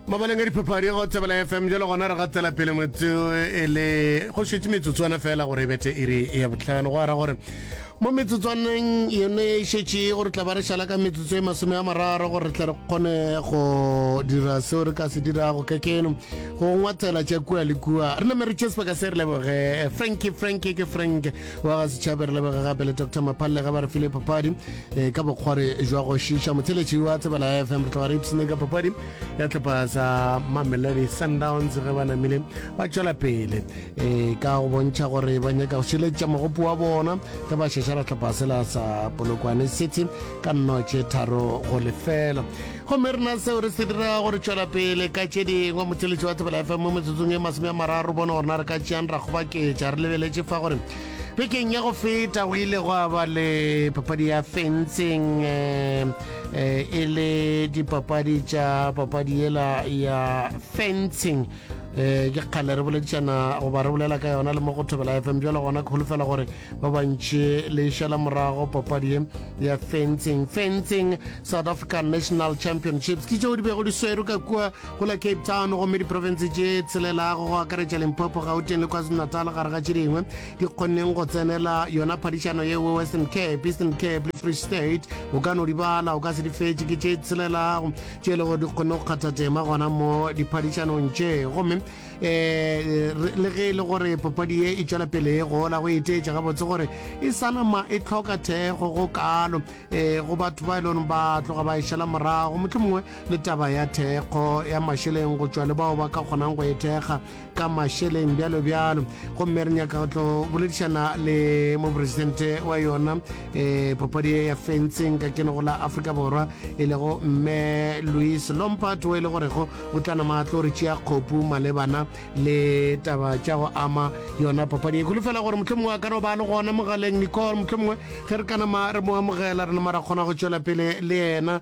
mabaleng a diphapadi go tsebela fm jalo gona re gatela pele motso e le go šetse metsotswana fela gore e bete e re e ya botlhano go ara gore mo metsotswaneng yone e šetše gore tla ba re šala ka metsotso e masome a mararo gore re tle re kgone go dira seo re ka se dirago ka keno go ngwathela tša kua le kua re name re tše sebaka se re leboge franki franki ke frank wa ga setšhabe re leboge gape le dr maphallega ba re file papadi Ee, ka bokgwari jwa go šiiša motheletši wa tsebana ya fm re tloga re ipsene ka papadi ya tlhopa sa mamelodi sundowns ge ba namile ba tšwela pele ee ka go bontšha gore ba nyaka go šiletša mogopo wa bona ge ba šešara tlhopa sela sa polokwane city ka nnotše tharo go lefela gomme rena seo re se dira gore tšwela pele ka tše dingwe motheletši wa tsebela fm mo metsotsong e masome a mararo bone gorena re ka tšeang ra kgobaketša re lebeletše fa gore Bekeng ya go feta go ile go aba le papadi ya fencing eh, eh, e le dipapadi tša papadi yela ya fencing um ke kgale re boledišana goba re bolela ka yona le mo go thobela fm jalo gona ke holofela gore ba bantšhe le šala morago papadi ya fencing fencing south african national championships ke tšeo di bego di swero ka kua go la cape town gomme diprofense tše tshelelago go akaretša limpopo gauteng le kwazulu-natal gare ga tše dingwe di kgonneng go tsenela yona phadišano yeo western cape eastern cape le free state o ka no di bala o ka se di fetše ke tše tshelelago tše e lego di kgonne go kgatha tema gona mo diphadišanong tše gomme um le ge e le gore papadi ye e tšwela pele e gola go eteetša gabotse gore e sanama e tlhoka thekgo go kalo um go batho ba e leng ba tloga ba e šala morago motlho mongwe le taba ya thekgo ya mašeleng go tšwa le bao ba ka kgonang go e thekga ka mašeleng bjalo bjalo gomme re nyaka go tlo boledišana le moporesidente wa yona um papadi ya fentseng ka kenego la aforika borwa e lego mme louis lompart o e le gorego o tla nama tlo re tšea kgopu malebana le taba tša go ama yona papadi e kgolo fela gore motlho mongwe a ka no ba le gona mogaleng nicole motlho mongwe ge re ka nama re mo amogela re nama ra kgona go tšwela pele le yena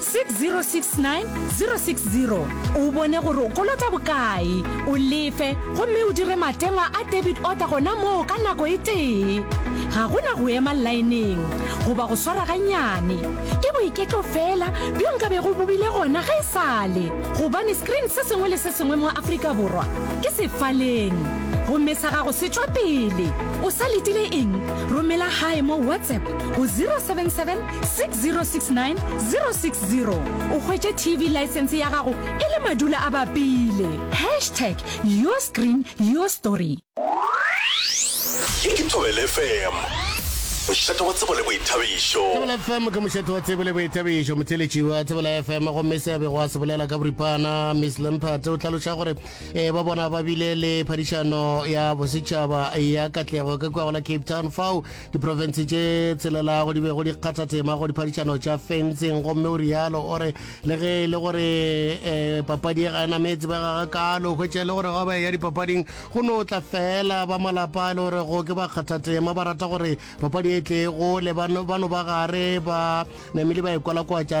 6069 060 o bone gore o kolota bokae, o lefe gomme o dire matengwa a debit order gona moo ka nako e tee. Ga go na go ema laeneng goba go swara gannyane. Ke boiketlo feela bjo nka bego bo bile gona ge e sa le gobane screen se sengwe le se sengwe mo Afrika Borwa ke sefaleng. Gomme sa gago se tšwa pele. O sa letile eng? Romela gae mo WhatsApp go 077 6069 060 o hwetše tv license ya gago e le madula a bapile hashtag your screen your story ye ke thobele fm mošate wa tsebo le boithabišo thobela fm ke mošate wa tsebo le boithabišo motheletši wa thobela fm gomme se bego a se bolela ka boripana miss lempate o tlhaloša gore e ba bona ba bile le phadišano ya bosetšhaba ya katlego ka kua go la cape town fao diprofense tše tselelago di bego di kgatha tema go diphadišano tša fentseng gomme o rialo o re le ge e le gore um papadi e ga e nametse ba gaga kalo hwetše le gore ga ba ya dipapading go no tla fela ba malapa e le gore go ke ba kgatha tema ba rata gore papadi e tle gole ba no ba gare ba namile ba e kwalakwatša